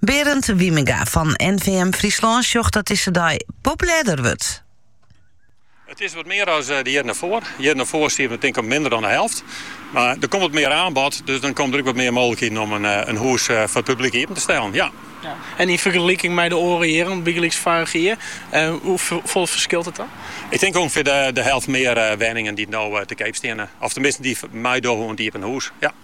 Berend Wijmenga fan NVM Fryslân sjocht dat dizze dei populêrder wurdt. It is wat mear as de jierren derfoar. De jierren derfoar stie it tink op minder dan de helft. Mar der komt wat mear aanbod, dus dan komen der ook wat mear mooglikheden om in hûs foar it publyk iepen te stellen. Ja. En yn fergeliking mei de oare jierren, bygelyks foarich jier, hoefolle ferskilt it dan? Ik tink ûngefear de helft mear wenningen dy't no te keap steane. Of tenminsten dy't meidogge oan it iepen hûs. Ja.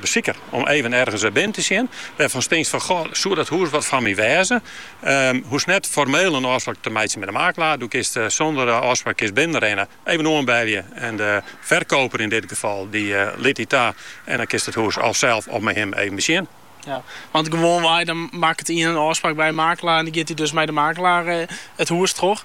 Besiker, om even ergens binnen te sjen, wêrfanst tinkst fan, goh, soe dat hûs wat foar my wêze? Hoechst net formeel in ôfspraak te meitsjen mei de makelaar. Do kinst sûnder ôfspraak kinst binnenrinne, even oanbelje en de ferkoper yn dit gefal dy lit dy ta en dan kinst it hûs of sels of mei him even besjen. Ja, want gewoanwei dan makket ien in ôfspraak by in makelaar en dan giet dy dus mei de makelaar it hûs troch.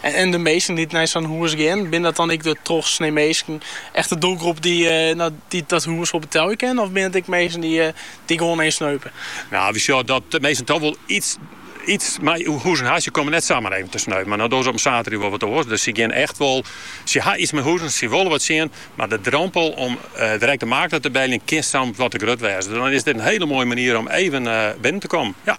En de minsken dy't nei sa'n hûs gean, binne dat dan ek de trochsnee minsken? Echt de doelgroep dy't dat hûs wol betelje kin? Of binne it ek minsken dy't gewoan eens sneupe? Nou, we sjogge dat de minsken toch wol iets mei hûzen ha. Se komme net samar even te sneupen. Mar no dogge se op in saterdei wol wat oars. Dus se gean echt wol. Se ha iets mei hûzen, se wolle wat sjen. Mar de drompel om direkt de makelaar te beljen kin soms wat te grut wêze. Dan is dit in hiele moaie manier om even binnen te kommen. Ja.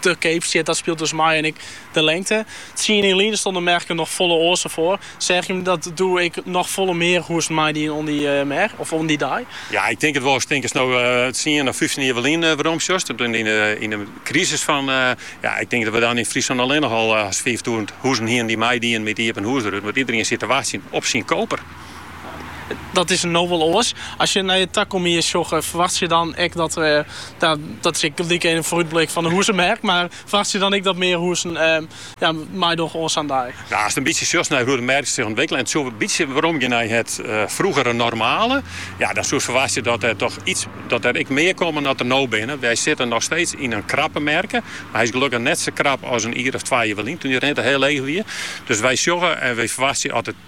Te keap stiet, dat spilet dus mei en ek de lengte. Tsien jier lyn ston de merk der noch folle oars foar. Seagen jim dat doe ek noch folle mear hûzen meidien oan dy merk of oan dy dei? Ja, ik tink it wol. Ik tink ast no tsien of fyftjin jier ferlyn weromsjochst, yn 'e krisis fan, ja, ik tink dat we dan yn Fryslân allinnich al hast fiiftûzen hûzen hiene dy't meidien mei de iepenhûzerûte, want iedereen siet te wachtsjen op syn koper. Dat is no wol oars. As je nei de takomst sjogge, ferwachtsje dan ek dat der, dat is ek gelyk even in foarútblik fan de hûzemerk, mar ferwachtsje dan ek dat mear hûzen meidogge oan sa'n dei? Nou, ast in bytsje sjochst nei hoe de merk sich ûntwikkelet en it soe in bytsje weromgean nei it froegere normale, ja, dan soest ferwachtsje dat der toch iets, dat der ek mear komme as der no binne. Wy sitte nochsteeds yn in krappe merk, mar hy is gelukkich net sa krap as in jier of twa jier ferlyn, toen de rente hiel leech wie. Dus wy sjogge en wy ferwachtsje as it,